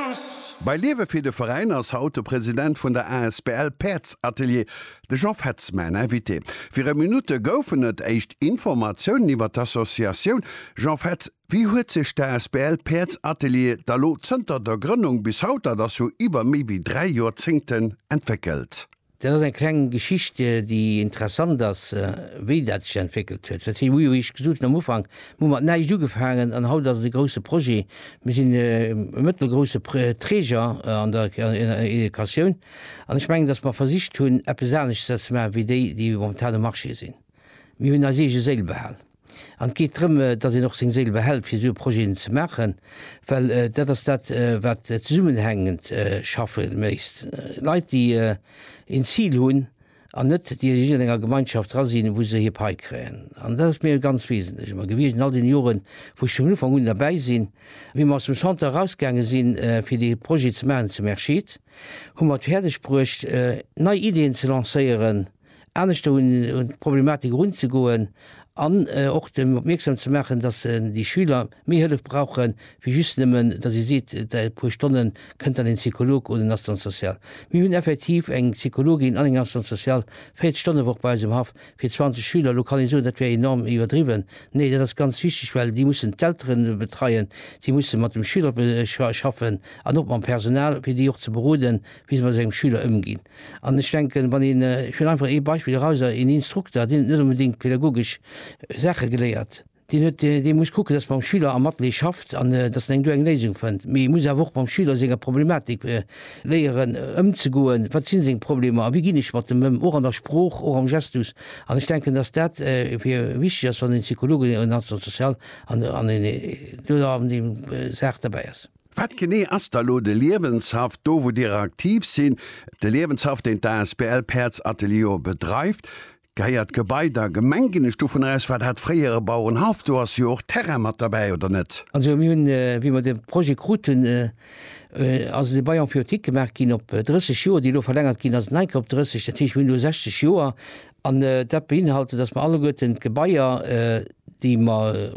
Dance. Bei Liewe fir de Veräin ass haut de President vun der asbl Päerdsatelier, de Jean Fetz, mäin Invité. Viru Minutte goufen et éischt Informatiounen iwwer d'Associatioun. Jean Fetz, wéi huet sech d'asbl Päerdsatelier da lo zënter der Grënnung bis haut, dat ass jo iwwer méi wéi dräi Joerzéngten, entwéckelt? Dat ass eng kleng Geschicht, déi interessant ass, wéi dat sech entwéckelt huet. Wat wéi ech gesot hunn am Ufank, mir hu mat näischt ugefaangen an haut ass et e grousse Projet. Mir sinn e mëttelgrousse Träger an der Educatioun an ech mengen, datt mer versicht hunn, eppes anescht ze maachen, wéi déi, déi momentan um Marché sinn. Mir hunn eis eege Séil behal. An et geet drëm, datt een och seng Séil behält, fir esou e Projeten ze maachen, well dat ass dat, wat zesummenhängend schaffe léisst. Leit, déi een Zil hunn an net déi a jiddwerenger Gemeinschaft dra sinn, wou se hir Pai kréien. An dat ass mir ganz wesentlech ëmmer gewiescht an all deene Joren, wou ech vun Ufank un derbäi sinn. Wéi mer aus dem Centre erausgaange sinn, fir dee Projet ze maachen zum Erscheed, hu mer et fäerdegbruecht, nei Ideeën ze lancéieren, aneschter un d'Problematik erunzegoen an och dem opmierksam ze maachen, dass déi Schüler méi Hëllef brauchen, wéi just nëmmen, dass ee seet, dei puer Stonne kënnt dann een Psycholog un en Assistante sociale. Mir hunn effektiv eng Psychologin an eng Assistante sociale 40 Stonnen d'Woch bei eis um Haff fir 20 Schüler. Elo kann ee soen, dat wär enorm iwwerdriwwen. Nee, dat ass ganz wichteg, well déi mussen d'Eltere betreien, si musse mat dem Schüler schaffen an och mam Personal, fir déi och ze beroden, wéi se mat esou engem Schüler ëmginn. An ech denken, wann een, ech huelen einfach ee Beispill eraus, een Instrukter, deen huet net onbedéngt pädagogesch Saache geléiert, deen huet, dee muss kucken, dass mam Schüler am Atelier schafft an dass en eng do eng Léisung fënnt, mee e muss awer och mam Schüler senger Problematik léieren ëmzegoen, wat si seng Problemer a wéi ginn ech mat dem ëm, och an der Sprooch, och am Gestus. An ech denken, dass dat fir wichteg ass, wann een Psychologe, en Assistant social an en Educateur an deem Saach derbäi ass. Wat genee ass da lo de Liewenshaff do wou Dir aktiv sinn? De Liewenshaff deen d'asbl Päerds Atelier bedreift, gehéiert d'Gebai der Gemeng ginn ech dovunner aus? War dat fréier e Bauerenhaff? Do ass jo och Terrain mat derbäi oder net? Also mir hunn wéi mer de Projet kruten ass et e Bail emphyiotique gemaach ginn op 30 Joer, déi elo verlängert ginn ass enke op 30, dat heescht mir hunn elo 60 Joer an dat beinhalte datt mer alleguerten d'Gebaier déi mer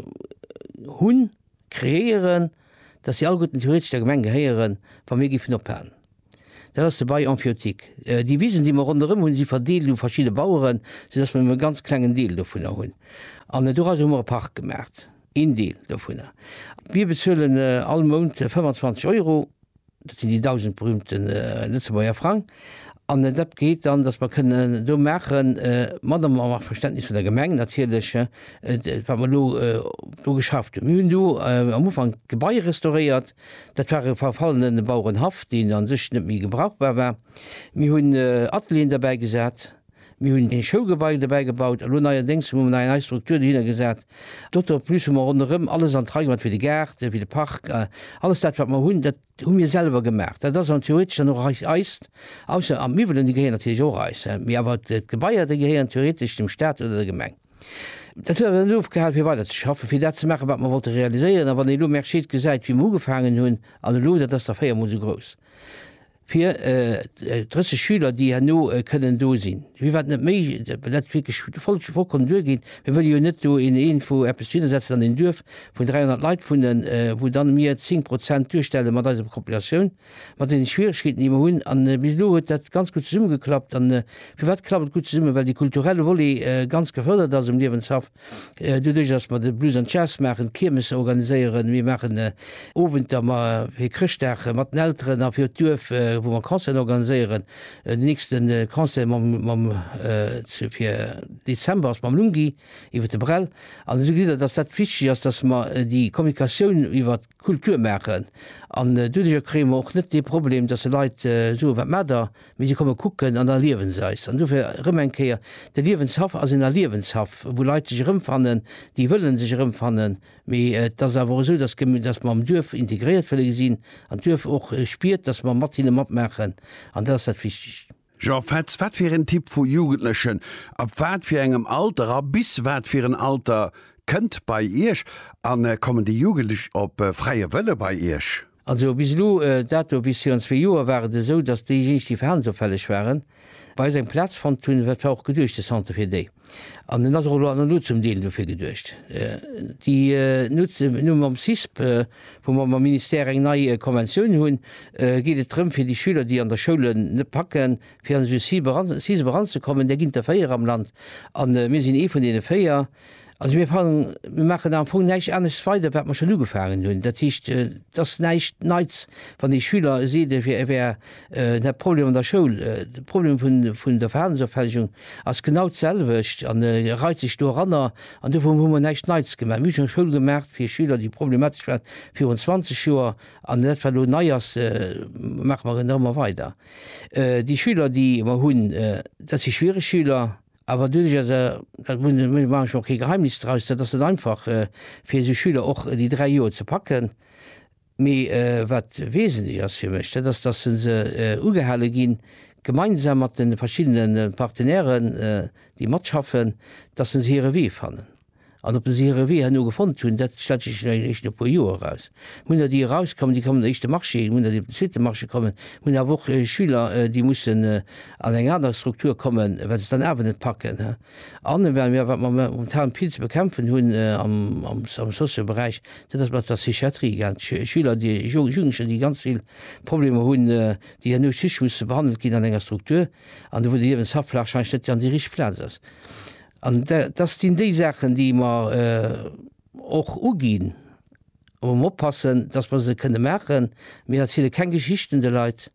hunn, Kreéieren, dass si alleguerten theoretesch der Gemeng gehéieren, wa mir géifen ophalen. Dat ass de Bail emphyiotique. Déi Wisen, déi mer ronderëm hunn, si verdeelt u verschidde Baueren, soudass mer nëmme e ganz klengen Deel dovunner hunn. An dorausser hu mer e Park gemaacht, een Deel dovunner. Mir bezuelen all Mount 25 Euro Dat sinn déi dausend berühmte Lëtzebuerger Frang. An dat geet dann, dass mer kënnen do maachen, mat am Verständnis vun der Gemeng natierlech, wat mer elo do geschafft hunn. Mir hunn do am Ufank d'Gebai restauréiert. Dat war e verfallene Bauerenhaff, deen u sech net méi gebrauchbar war. Mir hunn Atelieren derbäi gesat, Mir hunn e Schoulgebai dobäi gebaut, elo neierdéngs hu mer nach eng nei Struktur dohinner gesat. Doto plus hu mer ronderëm alles an d'Rei gemaach, fir de Gaart, fir de Park. Alles dat, wat mer hunn, dat hu mir selwer gemaach. Dat ass an theoretesch dann och eis, eist, ausser an d'Miwwelen, déi gehéieren natierlech och eis, mee awer d'Gebaier, déi gehéieren theoretesch dem Staat oder der Gemeng. Dat huet awer net ofgehal, fir weider ze schaffen, fir dat ze maachen, wat mer wollte realiséieren. A wann ee elo Mercier gesäit, wéi mer ugefaangen hunn, an elo, dat ass da véiermol esou grouss. Fir 30 Schüler, déi herno kënnen do sinn, wier wat net méi, well dat wierklech voll, vollkommen duergeet. Mir wëlle jo net do een, een wou eppes dohinner setzen an een Duerf, wou 300 Leit wunnen, wou dann mir 10 Prozent duerstelle mat eiser Populatioun, mat deene Schwieregkeeten, déi mer hunn. An bis elo huet dat ganz gutt zesummegeklappt. A firwat klappt et gutt zesummen? Well dee kulturelle Volet ganz gefërdert ass um Liewenshaff. Doduerch datt mer de Blues an Jazz maachen, d'Kiermesse organiséieren, mir maachen Owenter ma fir Chrëschtdag mat den Elteren a fir d'Duerf, wou mer Concerten organiséieren. Den nächste Concert mam, mam fir Dezember ass mam Lungi iwwer de Brel. An esou geet dat, datt dat wichteg ass, datt mer déi Kommunikatioun iwwert Kultur maachen. An doduerjer kréie mer och net dee Problem, dass se Leit soen, Wat maacht der? Mee si komme kucken an erliewen se eis. An dofir erëm eng Kéier, De Liewenshaff ass een Erliewenshaff, wou Leit sech erëmfannen, déi wëlle sech erëmfannen. Mee et ass awer esou, dass mer am Duerf integréiert wëlle sinn an d'Duerf och spiert, dass mer mat hinne matmaachen. An dat ass dat Wichtegst. Jean Fetz, Wat fir en Typ vu Jugendlechen, ab wat fir engem Alter a bis wat fir en Alter kënnt bei Iech an kommen déi Jugendlech op fräie Wëlle bei Iech? Also bis elo, dat do bis virun zwee Joer war et esou, datt déijéineg déi verhalensopfälleg waren bei eis eng Plaz fonnt hunn, dat war och geduecht de Centre fir déi. An en ass och elo an der Null zum Deel dofir geduecht. Déi Nuts, elo mam CISP, wou mer mam Ministère eng nei Konventioun hunn, geet et drëm, fir déi Schüler, déi an der Schoul en net packen, fir an esou e CISP eranzekommen. Där ginn et der véier am Land a mir sinn ee vun deene véier. Also mir fannen, mir maachen am Fong näischt anescht weider, wat mer schonn ugefaangen hunn. Dat heescht, et ass näischt Neits, wann ee Schüler seet, e wär De Problem an der Schoul, de Problem vun der Verhalensopfällegung ass genau d'selwecht an e reit sech do eranner. An dofir hu mer näischt Neits gemaach. Mir hu schonn Schoul gemaach fir Schüler, déi problematesch waren, virun 20 Joer. An dat, wat elo nei ass, maache mer genau ëmmer weider. Déi Schüler, déi mer hunn, dat si schwiereg Schüler. Awer doduerch ass, dat muss een, do maache ech mer och kee Geheimnis draus, dat ass net einfach fir esou Schüler och déi dräi Joer ze packen. Mee wat wesentlech ass fir mech, dat ass, dass se se ugehale ginn, gemeinsam mat de verschiddene Partenairen, déi matschaffen, dass se hire Wee fannen. An ob se hire Wee herno gefonnt hunn, dat stellt sech jo eréischt no e puer Joer eraus. Mir hunn der, déi erauskommen, déi kommen op den éischte Marché, mir hunn der, déi op den zweete Marché kommen, mir hunn awer och Schüler, déi mussen an eng aner Struktur kommen, well se et dann awer net packen. An wat mir momentan vill ze bekämpfen hunn am Socio-Beräich, dat ass mat der Psychiatrie, Schüler, Jugendlecher, déi ganz vill Problemer hunn, déi herno just musse behandelt ginn an enger Struktur, an do wou de Liewenshaff warscheinlech net an déi richteg Plaz ass. An dat sinn déi Saachen, déi mer och uginn, wou mer oppassen, datt mer se kënne maachen. Mir erziele keng Geschichten de Leit.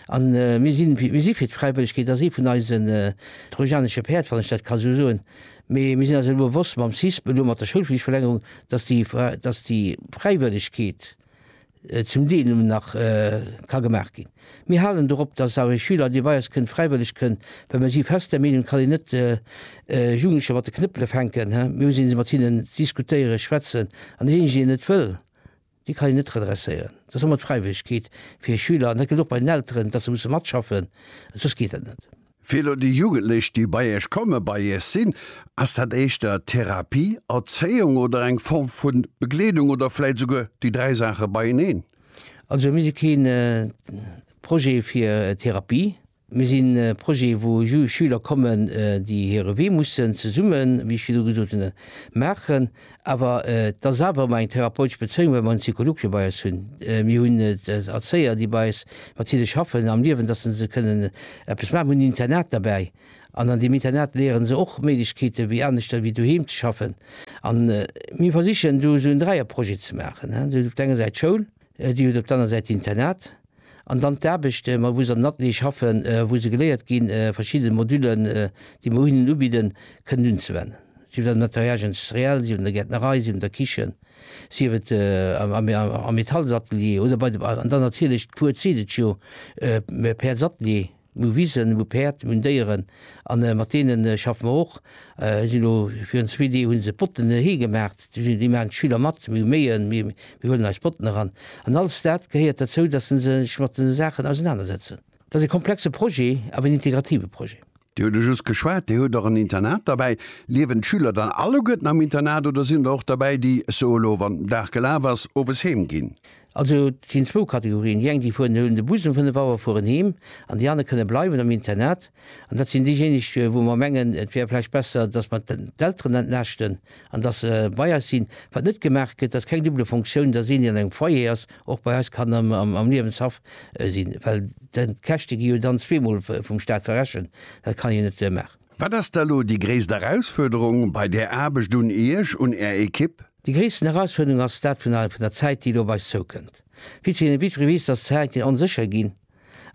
A mir sinn, mir si fir d'Fräiwëllegkeet a si vun eise trojanesche Päerd, wann ech dat ka esou soen. Mee mir sinn eis elo bewosst mam CISP, elo mat der Schoulflichtverlängerung, dass déi, dass déi Fräiwëllegkeet zum Deel nëmmen nach ka gemaach ginn. Mir halen dorop, dass awer ee Schüler, dee bei eis kënnt, fräiwëlleg kënn, well mir si fest der Meenung, et kann een net Jugendlecher mat de Knëppele fänken. Mir hu se, mir si mat hinnen, diskutéieren, schwätzen an deen eenzegen, deen net wëll, Déi kann een net redresséieren. Et ass ëmmer d'Fräiwëllegkeet fir e Schüler, an dat gëllt och bei den Elteren, dass se musse matschaffen, soss geet dat net. Fir elo déi Jugendlech, déi bei Iech kommen, bei Iech sinn, ass dat éischter Therapie, Erzéiung oder eng Form vu Begleedung oder vläit souguer déi dräi Saache beieneen? Also mir si kee Projet fir Therapie. Mir sinn e Projet, wou Schüler kommen, déi hire Wee mussen zesummen, wéi ech virdu gesot hunn, maachen. Awer et ass awer ëmmer eng therapeutesch Bezéiung, well mer en Psycholog jo bei eis hunn. Mir hunn Erzéier, déi bei eis mat hinne schaffen am Liewen, dass se se kënnen eppes maachen. Mir hunn en Internat derbäi an an deem Internat léiere se och Méiglechkeete wéi aneschter wéi doheem ze schaffen. A mir versichen do esou en Dräierprojet ze maachen, op der enger Säit d'Schoul, Dir hutt op der aner Säit d'Internat an dann d'Aarbecht, mat wou se an den Ateliere schaffe wou se geléiert ginn, verschidde Modullen, déi mer hinnen ubidden, kënnen unzewennen. Sief et am Nettoyage industriel, sief et an der Gäertnerei, sief et an der Kichen, sief et am Metallsatelier oder bei de, an dann natierlech d'Cour zitt et jo, d'Päerdsatelier. Mir hu Wisen, mir hu Päerd, mir hunn Déieren an mat deene schaffe mer och. Déi sinn elo, virun zwee Deeg hu se Botten hee gemaacht, déi maachen d'Schüler mat. Mir hu Méien, mir huelen eis Botten eran. An alles dat gehéiert derzou, datt se sech mat de Saachen ausenanersetzen. Dat ass e komplexe Projet, awer en integrative Projet. Dir hutt e just geschwat, Dir hutt och en Internat derbäi. Liewen d'Schüler dann alleguerten am Internat oder sinn der och derbäi, déi, sou elo wann den Dag gelaf ass, owes heem ginn? Also et sinn zwou Kategorien, déi eng déi fueren, déi huelen de Bus um 5 Auer, fueren heem, an déi aner kënne bleiwen am Internat. An dat sinn déijéineg, wou mer mengen, et wär vläicht besser, dass mer d'Elteren entlaaschten an dass se bei eis sinn. Wat net gemaach gëtt, ass keng double Fonctioun, dass een, deen an engem Foyer ass, och bei eis kann am Liewenshaff sinn, well d'Käschte gi jo dann zweemol vum Stat verrechent. Dat kann een net maachen. Wat ass da elo déi gréisst Erausfuerderung bei där Aarbecht un Iech, un Är Equipe? Déi gréissten Erausfuerderung ass dat vun der vun der Zäit, déi elo op eis zoukënnt. Vitry ne Vitry weess, datt d'Zäiten onsécher ginn.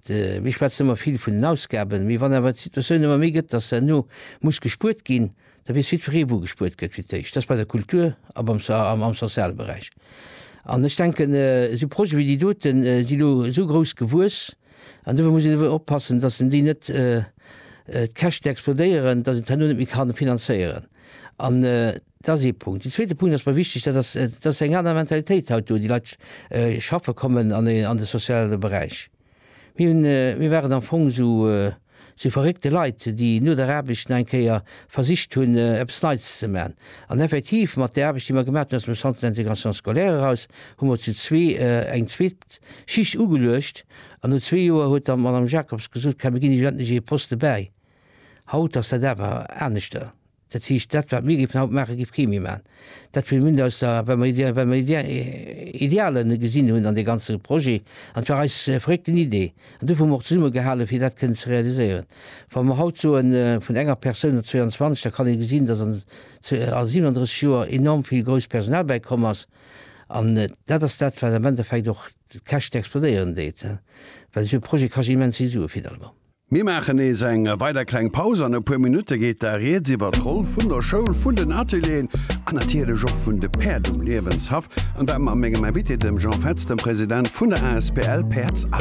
Mir schwätzen ëmmer vill vun den Ausgaben, mee wann awer d'Situatioun ëmmer méi gëtt, datt herno muss gespuert ginn, da weess jiddweree wou gespuert gëtt fir d'éischt, dat ass bei der Kultur a beim am soziale Beräich. An ech denken, esou Projete wéi déi doten si elo esou grouss gewuess an dofir muss een elo oppassen, datt een déi net d'Käschten explodéieren, datt een et herno net méi ka finanzéieren. An Dat ass ee Punkt. Deen zweete Punkt ass mer wichteg, dat ass, et ass eng aner Mentalitéit haut do. Déi Leit schaffe kommen an de soziale Beräich. Mir hunn, mir waren am Fong esou, esou verréckte Leit, déi no der Aarbecht nach eng Kéier versicht hunn, eppes Neits ze maachen. An effektiv, mat där Aarbecht, déi mer gemaach hunn aus dem Centre d'intégration scolaire eraus, hu mer zu zwee eng zweet Schicht ugeluecht. An no zwee Joer huet dann d'Madame Jacobs gesot, Kä mir ginn iech endlech ee Poste bäi. Haut ass dat awer aneschter. Dat heescht, dat wat mir géifen haut maachen, géif kee méi maachen. Dat wéi mir aus der, well mer, well mer Idealen gesinn hunn an dee ganze Projet, an et war eis verréckten Idee, an dofir hu mer och zesumme gehalen, fir dat kënnen ze realiséieren. Wa mer haut soen, vun enger Persoun op 22, da kann ee gesinn, dass an 37 Joer enorm vill grousst Personal bäikomm ass. An dat ass dat, wat am Endeffekt och d'Käschte explodéieren deet, well esou e Projet kascht immens vill Sue finalement. Mir maachen nees eng weider kleng Paus. An e puer Minutte geet da rieds iwwer d'Roll vun der Schoul, vun den Atelieren an natierlech och vun de Päerd um Liewenshaff, an dat mam mengem Invité, dem Jean Fetz, dem President vun der asbl Päerds a.